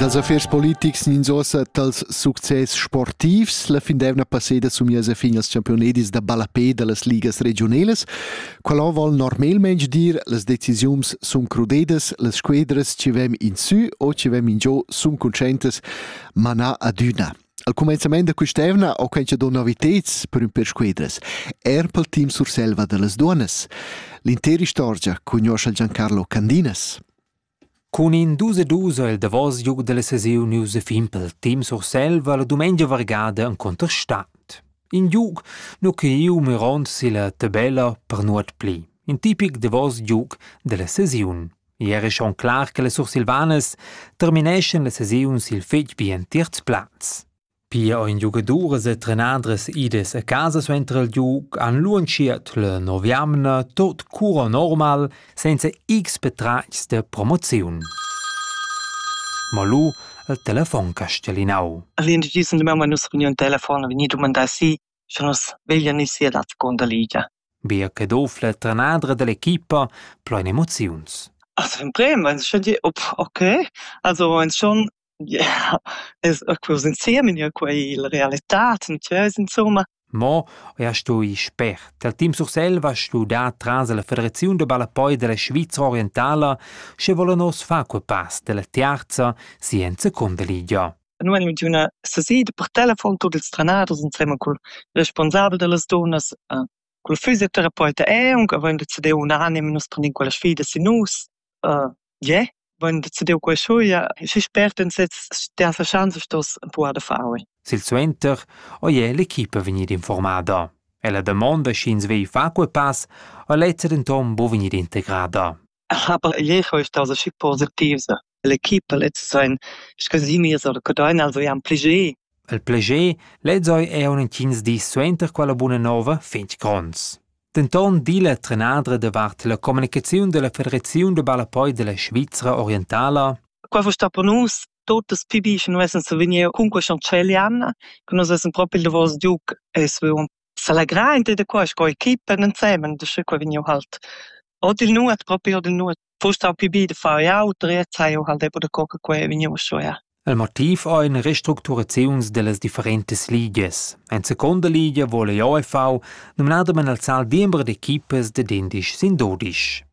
Dals affers politics ninzossa dals success sportivs la fin d'eivna passeda somias a fin als championedis da ballapé da las ligas regiunelas. Qualon vol normalmaing dir las decisiuns sun crudedas, las squedras ci vem in sü o ci vem in giò sun conscientas, ma na adüna. Al cumenzament da quest'evna ho quencha do noviteds per ün per squedras, er pel team Surselva da las duonas. L'intera istorgia cugnuoscha Giancarlo Candinas. Cun in dus e dus ha il davos giug dalla sesiun iu fin pel team Surselva la dumengia vargada en contestant. In giug nu che iu mirond silla tabella per nuot pli. In tipic davos giug dalla sesiun. Ieri schon clar che le Sursilvanes termineschan la sesiun sil fetg bien tiert plaz. Pia ein giugaduras e trenadras idas a casa suenter il giug han luentschiert la novemna tot cura normal senza x patratgs da promoziun. Ma lu il telefon castellinau. All'individuo di mamma nus reuniun telefon vegni dumandà si, sche nus veglian ir sia dat con da Ligia. Bia che dof la trenadra dell'equipa plein emoziuns. Also im Bremen, wenn es schon die, ok, also wenn es schon Yeah, es quos insiem in jeu quai il realitat in tschess insumma. Mo ja stui spert. Al Team Sursel va studar tras la Federaziun da ballapoi della Svizra orientala, sche vola nos fa quel pass della terza scienza condeligia. Noi animin d'üna sesida per telefon tuot ils trenaders insema cul responsabel dellas dunas, uh, cul fysiotherapeut e aunc avain decideu un anim, nus prendian quella sfida sin nus. Uh, Ie, vain decidieu quaisuja e fich spert in sez tiasa schanza stoss empuar da far oui. Silsuenter ò ie l'equipa vegnida informada. Ella damonda sch'ins vei far quei pass ha lezza denton buca vegnida integrada. Aber ieri ist also schick positiv. L'equipa lezza sein scasimirs oder codain, also ja am plägier. Il plägier lez ei aunc entgins dis suenter quella buna nova fetg gronds. Denton di la trenadra davart la communicaziun dalla Federaziun da ballapoi dalla Svizra orientala. Qua vo sta per nus totes pi bi che nus essen vegnir cun quei chancelian, che nus essen proprio il davos duc e svon s'allegrar inter da qua sco equipa ensemen da sche qua vegniu halt. Od il nuot proprio od il nuot. Fuss stau pli bi da far ei auter, e tscheu ha'l depurà co che quei vegni ussa ja. Il motiv ei ina restructuraziuns dallas differentas ligias. En seconda ligia vole l'OFV numnadamein il sal diember d'equipas da dindisch sin dudisch.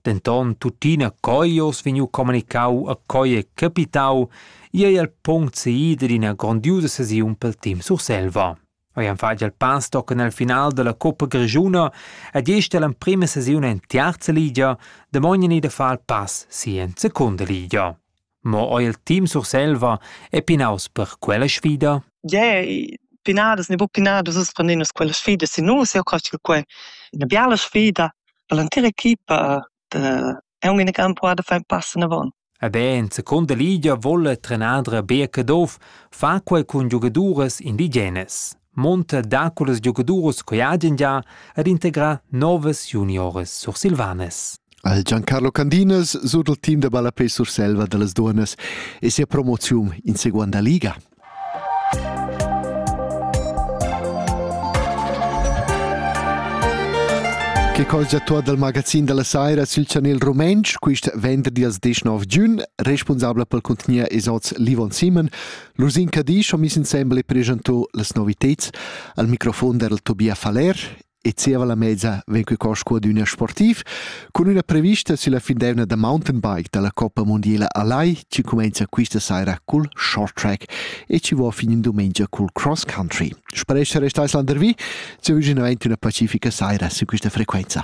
Denton tuttina coi oz vegniu communicau a coi è capitau, ei il punct seida d'ina grondiusa sesiun pel team Surselva. hajan fatg il pastoc en el final dalla coppa grischuna ed gest l'emprema sesiun en tiarza ligia damognan i da far pass si en secunda ligia. Mo oi il team Surselva è pinaus per quella sfida? Yeah, pinadas ne bu pinadas us prendinas quella sfida si nus eu crasch che quei ina biala sfida per l'entira equipa e un ina campo da far pass anavon. E ben, seconda Ligia volle trenadra Birke Doof fa quei cun giogaduras indigenas. Monta dà con las giogaduras che agen già ad integra novas junioras sursilvanas. Al Giancarlo Candinas sut il team da ballapè Surselva da las dunas e sia promozium in seguanda liga. Che cos da tuot dal magazin da la saira sül chanel rumentsch quist venderdi als 19 giun, responsabla pel contgnier es hoz Livon Simon. L'Usin Cadisch ho miss insembel e preschanto las noviteds al microfon der Tobia Faller e zieva la mezza vegn que cosco ad ün sportiv cun üna prevista sulla findeivna da mountainbike dalla Coppa Mondiela a Lai chi cumenza quista saira cul short track e chi vo fin in dumengia cul cross country. Sparesce restais landervi, se vügin avanti una pacifica saira su quista frequenza.